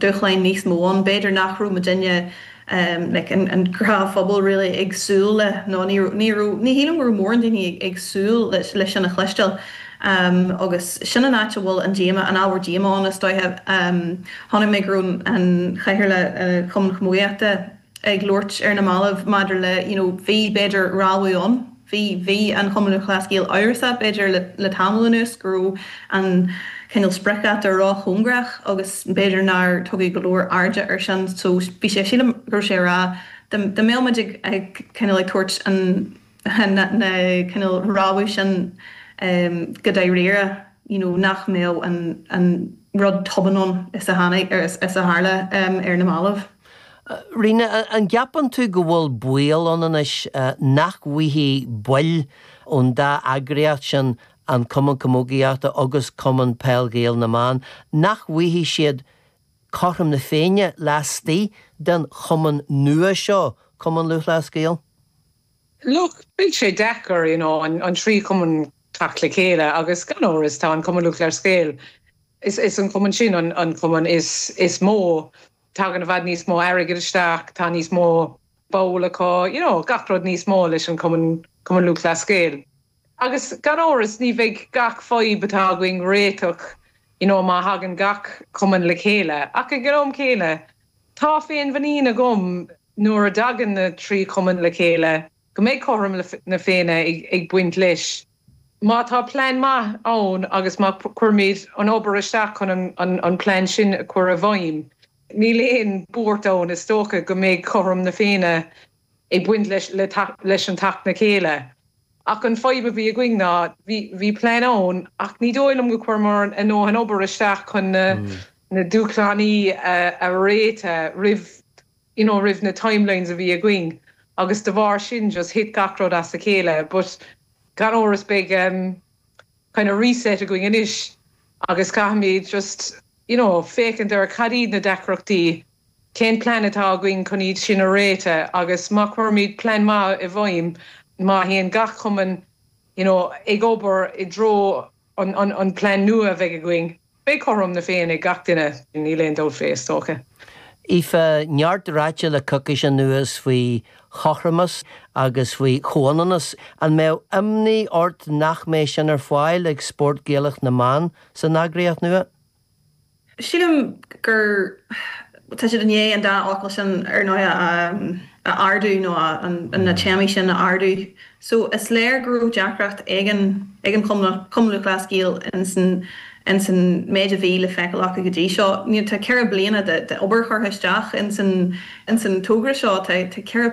dúshláin níos mó ann. B'fhéidir nach raibh muidinne, an gnáthphobal really, ag súil le, nó ní raibh, ní raibh, ní shílim go raibh mórán daoine ag súil le sin a chloisteáil. Agus sin an áit a bhfuil an díomá, an ábhar díomá ann is dóiche. Chonaic mé go raibh an cathaoirleach ar Chumann Camógaíochta. ag labhairt ar na mallaibh maidir le you know bhí b'fhéidir rabhadh ann bhí bhí an Cumann Lúthchleas Gael amhrasach b'fhéidir le le tamall anuas go raibh an cineál spriocdháta róchóngarach agus b'fhéidir nár tugadh go leor airde air sin so bhí sé sílim go raibh sé a rá dá mbeadh muid ag ag cineál ag tabhairt an na cineál rabhadh sin go dáiríre you know nach mbeadh an an rud tobann ann is a tháinig or is a tharla ar na mallaibh. Ríona, an gceapann tú go bhfuil baol ann anois nach bhfaighidh baill ón dá eagraíocht sin, an Cumann Camógaíochta agus Cumann Peil Gael na mBan, nach bhfaighidh siad Cothrom na Féinne laistigh den chumann nua seo, Cumann Lúthchleas Gael? Look, beidh sé deacair, you know, an trí chumann teacht le chéile agus gan amhras tá an Cumann Lúthchleas Gael, is an cumann sin an cumann is mó, tagann i bhfad níos mó airgid isteach, tá níos mó ball acu, you know, gach rud níos mó leis an cumann, Cumann Lúthchleas Gael. Agus gan amhras ní bheidh gach fadhb atá againn réiteach, you know, má thagann gach cumann le chéile ach ag an am céanna, Tá féinmhuinín agam nuair a dtagann na trí chumann le chéile go mbeidh cothrom na Féinne ag baint leis má tá plean maith ann agus má chuirimid an obair isteach chun an plean sin a chur i bhfeidhm. Níl aon buairt ann, is dócha, go mbeidh cothrom na Féinne ag baint leis leis an teacht le chéile ach an fadhb a bhí againn ná bhí plean ann ach ní dóigh liom go chuireamar a ndóthain obair isteach chun na dúshlánaí a réiteach roimh you know roimh na timelines a bhí againn agus de bharr sin just thit gach rud as a chéile but gan amhras beidh kind of reset againn anois agus caithfimid just you know féachaint ar cad iad na deacrachtaí Cén plean atá againn chun iad sin a réiteach agus má chuirimid plean maith i bhfeidhm, má théann gach cumann you know ag obair i dtreo an plean nua a bheidh againn, beidh cothrom na Féinne ag gach duine, níl aon dabht faoi, is dócha. Aoife, neart ráite le coicís anuas faoi chothromas agus faoi chomhionannas. An mbeadh imní ort nach mbeidh sin ar fáil ag spóirt Ghaelacha na mBan san eagraíocht nua? Sílim gur tá siad i ndiaidh an dá fhocal sin ar ndóigh a ardú nó na téamaí sin a ardú so is léir go raibh deacracht éigin ag an Chumann Lúthchleas Gael ins an méid a bhí le feiceáil acu go dtí seo. Tá ceithre bliana d'obair curtha isteach ins an togra seo, tá ceithre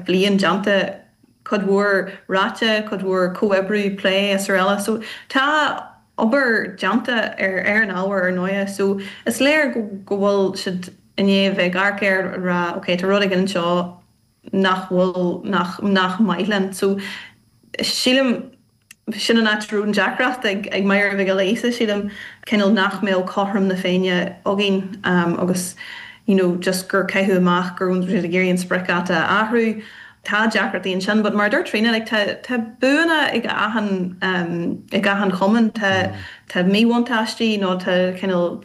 bliain déanta, cuid mhór ráite, cuid mhór comhoibriú, plé, srl. So tá. obair déanta ar an ábhar ar ndóighe so is léir go bhfuil siad i ndiaidh a bheith ag amharc air ag rá ok tá rud éigin anseo nach bhfuil, nach, nach maith linn. So sílim sin an áit a raibh an deacracht ag Máire Mhic Giolla Íosa sílim, cineál nach mbeadh cothrom na féinne againn agus you know just gur caitheadh amach go raibh siad ag iarraidh an spriocdháta a athrú tá deacrachtaí ansin but mar a dúirt Tríona like tá buanna ag achan ag achan chumann tá tá míbhuntáistí nó tá cineál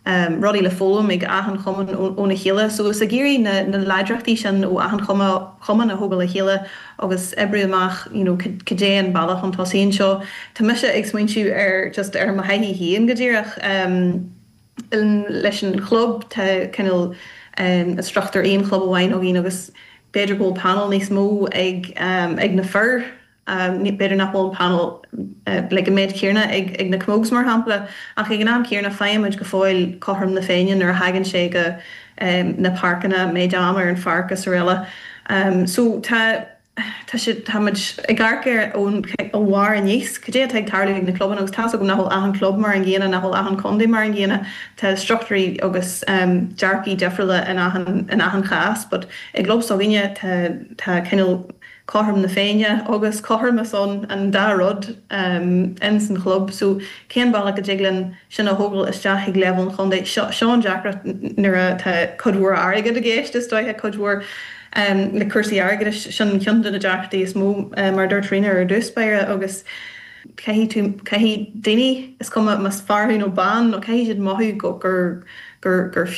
ehm rudaí le foghlaim ag achan chumann óna chéile so is ag iarraidh na na láidreachtaí sin ó achan chumann a thógáil le chéile agus oibriú amach you know cad é an bealach chun tosaigh anseo tá mise ag smaointiú ar just ar mo thaithí féin go díreach ehm leis an club. Tá cineál struchtúr aon chlub amháin againn agus b'fhéidir go bhfuil panel níos mó ag na fir, b'fhéidir nach bhfuil an panel like an méid céarna ag na Camogues mar shampla ach ag an am céarna faighimid go fóill cothrom na féinne nuair a thagann sé go na páirceanna, méid am ar an pháirc is araile. So tá. Tá sé, tá muid ag amharc ar ón a bharr aníos, cad é atá ag tarlú ag na clubanna agus tá's agam nach bhfuil achan chlub mar an gcéanna, nach bhfuil achan chontae mar an gcéanna, tá struchtúirí agus ehm dearcaí difriúla in achan, in achan chás but i gclub s'againne tá, tá cineál cothrom na féinne agus cothromas ann, an dá rud ehm in san chlub so cén bealach a dtig linn sin a thógáil isteach ag leibhéal an chontae, seo, seo an deacracht nuair a tá cuid mhór airgead i gceist is dóiche, cuid mhór. le cúrsaí airgeadais. Sin ceann de na deacrachtaí is mó, mar a dúirt Tríona ar dtús báire, agus caithfidh tú, caithfidh daoine, is cuma más fear thú nó bean, nó caithfidh siad mothú gur, gur, gur, gur fiú.